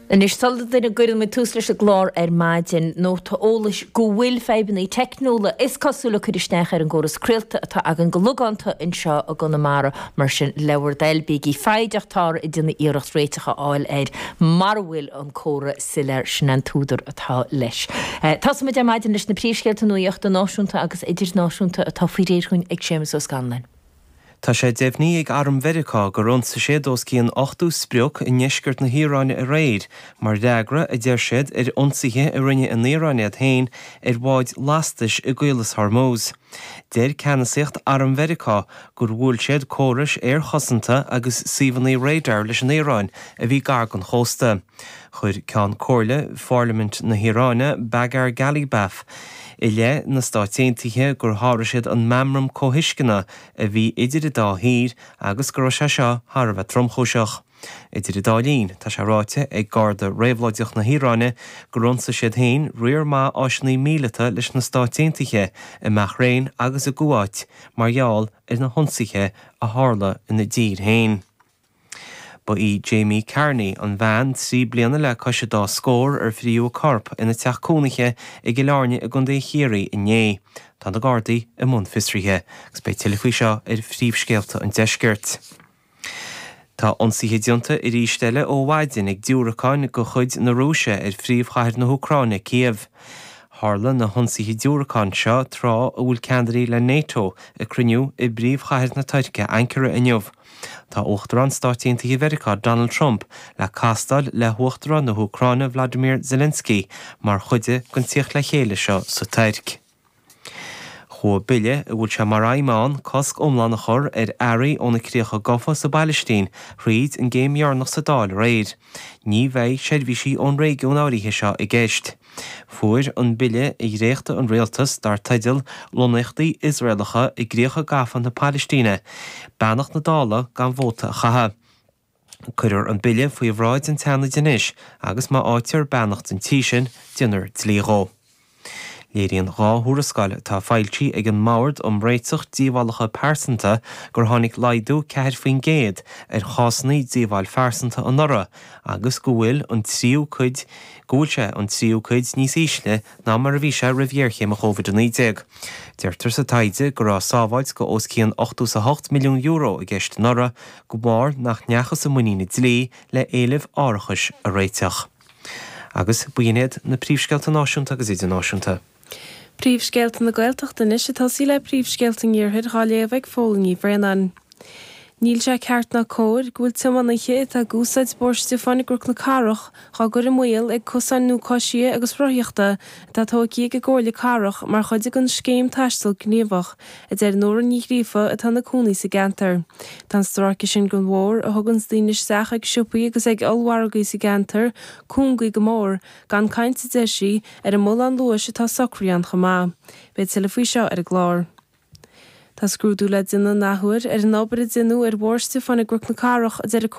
Anois sula gcuireann muid tús leis an gclár ar maidin, nóta eolais go bhfuil fadhbanna teicniúla is cosúil ag cur isteach ar an gcóras craolta atá againn go logánta anseo i gConamara, mar sin le bhur dtoil, bígí foighdeach táthar ag déanamh iarracht réiteach a fháil air mara bhfuil an comhartha soiléir, sin é an t-údar atá leis. Tosaímid ar maidin leis na príomhscéalta nuaíochta náisiúnta agus idirnáisiúnta atá faoi réir chugainn ag Séamus Ó Scanláin. Tá sé deimhnithe ag Arm Mheiriceá gur ionsaigh siad os cionn 80 sprioc i ndeisceart na hIaráine aréir mar fhreagra, a deir siad, ar ionsaithe a rinne an Iaráin iad féin ar bháid lastais i gCaolas Hormuz. Deir ceannasaíocht Arm Mheiriceá gur bhuail siad córais aerchosanta agus suíomhanna radar leis an Iaráin a bhí gar don chósta. Chuir Ceann Comhairle Pharlaimint na hIaráine, Bagher Ghalibaf, i leith na Stáit Aontaithe gur sháraigh siad an meamram comhthuisceana a bhí idir an dá thír agus go raibh sé seo thar a bheith tromchúiseach. Idir an dá linn, tá sé ráite ag Garda Réabhlóideach na hIaráine gur ionsaigh siad féin riar maith áisiúnaí míleata leis na Stáit Aontaithe i mBahrain agus i gCuáit mar gheall ar na hionsaithe a tharla ina dtír féin. Ba í Jamie Carney an bhean trí bliana le cois a dá scór ar frítheadh a corp ina teach cónaithe i gCill Airne i gcontae Chiarraí inné. Tá na Gardaí i mbun fiosraithe agus beidh tuilleadh faoi seo ar phríomhscéalta an deiscirt. Tá ionsaithe déanta arís eile ó mhaidin ag diúracáin de chuid na Rúise ar phríomhchathair na hÚcráine, Cív. Tharla na hionsaithe diúracán seo tráth a bhfuil ceannairí le Nato ag cruinniú i bpríomhchathair na Tuirce, Ankara inniu. Tá Uachtarán Stáit Aontaithe Mheiriceá Donald Trump le castáil le hUachtarán na hÚcráine Volodymyr Zelensky mar chuid den tíocht le chéile seo sa Tuirc. Chuaigh bille a bhfuil sé mar aidhm ann cosc iomlán a chur ar earraí ó na críocha gafa sa bPailistín thríd an gcéim dheireanach sa Dáil aréir. Ní bheidh seirbhísí ón réigiún áirithe seo i gceist. Fuair an bille a dhréacht an rialtas, dar teideal 'Lonnaíochtaí Iosraelacha i gCríocha Gafa na Palaistíne', beannacht na Dála gan vóta a chaitheamh. Cuirfear an bille faoi bhráid an tSeanaid anois agus má fhaightear beannacht an Tí sin, déanfar dlí dhe. Léiríonn dhá thuarascáil atá foilsithe ag an mBord um Réiteach Díobhálacha Pearsanta gur tháinig laghdú ceathair faoin gcéad ar chásanna díobháil phearsanta anuraidh agus go bhfuil an tríú cuid go bhfuil sé an tríú cuid níos ísle ná mar a bhí sé roimh ghéarchéim Covid-19. Deirtear sa taighde go raibh sábháilt de os cionn €88 milliún i gceist anuraidh de bharr nach ndeachthas i muinín an dlí le héilimh árachais a réiteach. Agus b'in iad na príomhscéalta náisiúnta agus idirnáisiúnta. Príomhscéalta na Gaeltachta anois ag tosaí le Príomhscéalta an Iarthair á léamh ag Fódhla Ní Bhraonáin. Níl sé ceart ná cóir go bhfuil tiománaithe atá ag úsáid Bhóthar Stiofáin i gCnoc na Cathrach á gcur i mbaol ag cosáin nua coisithe agus rothaíochta atá tógtha ag an gComhairle Cathrach mar chuid den Scéim Taisteal Gníomhach, a deir Nóra Ní Ghríofa atá ina cónaí sa gceantar. Tá an stráice sin de bhóthar a thuganns daoine isteach ag siopaí agus ag ollmhargaí sa gceantar cúngaí go mór, Gan caint, a deir sí, ar an mbullán luais atá socraithe ann chomh maith. Beidh tuilleadh faoi seo ar an gclár. Tá scrúdú le déanamh an athuair ar an obair a deineadh ar Bhóthar Stiofáin i gCnoc na Cathrach, a deir a